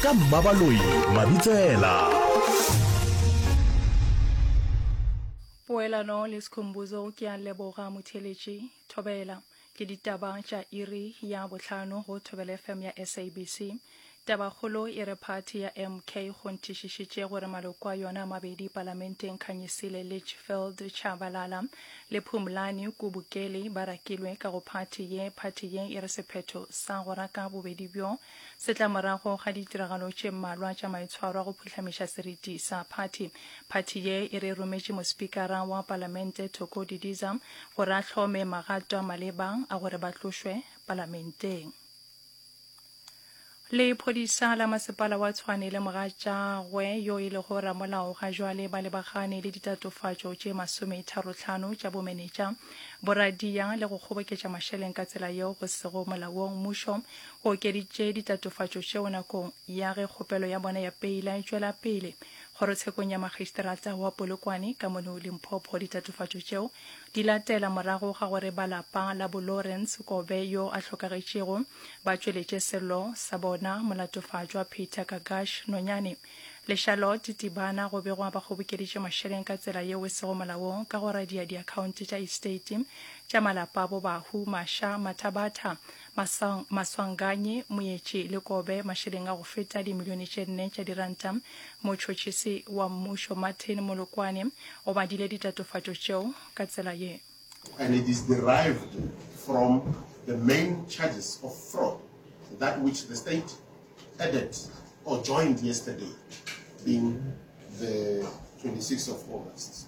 ka mmabaloi mabitsela poelano le sekhombuzo ke a leboga motheletši thobela ke ditaba tša iri ya bohlano go thobela fm ya sabc tabakgolo e re phathi ya mk go nthišišitše gore maloko a yona mabedi palamenteng khanyisile litchfield chabalala le phumlani kubukeli ba rakilwe ka go phathi ye phathi ye e re sephetho sa go raka bobedi bjo Setlamorago ga ditiragalo tše mmalwa tša maitshwaro a go phuhlameša seriti sa phathi, phathi ye e re rometše mospikara wa palamente Thoko Didiza gore a hlome magato a maleba a gore ba tlošwe palamenteng. Lephodisa la masepala wa Tshwane le mogatšagwe yo e lego ramolao ga jwale ba lebagane le ditatofatšo tše masometharotlhano tša bomenetša, boradia le go kgoboketša mašeleng ka tsela yeo go sego molaong. Mmušo O okeditše ditatofatšo tšeo nakong ya ge kgopelo ya bona ya peila e tšwela pele. Kgorotshekong ya Magistrata wa Polokwane ka mono Limpopo ditatofatšo tšeo di latela morago ga gore ba lapa la bo Lawrence Kobe yo a hlokagetšego ba tšweletše sello sa bona molatofatšwa Peter Kagash Nonyane le Charlotte Tibana go begwa ba kgobokeditše mašeleng ka tsela yeo e sego molaong ka go radia diakhaonte tša estate tša malapa a bo Bahu, Masha, Mathabatha, Masang, Maswanganyi, Moetši le Kobe mašeleng a go feta dimilione tše nne tša diranta. Motšhotšhisi wa mmušo Martin Molokwane o badile ditatofatšo tšeo ka tsela ye. and it is derived from the main charges of fraud that which the state added or joined yesterday being the 26 of August.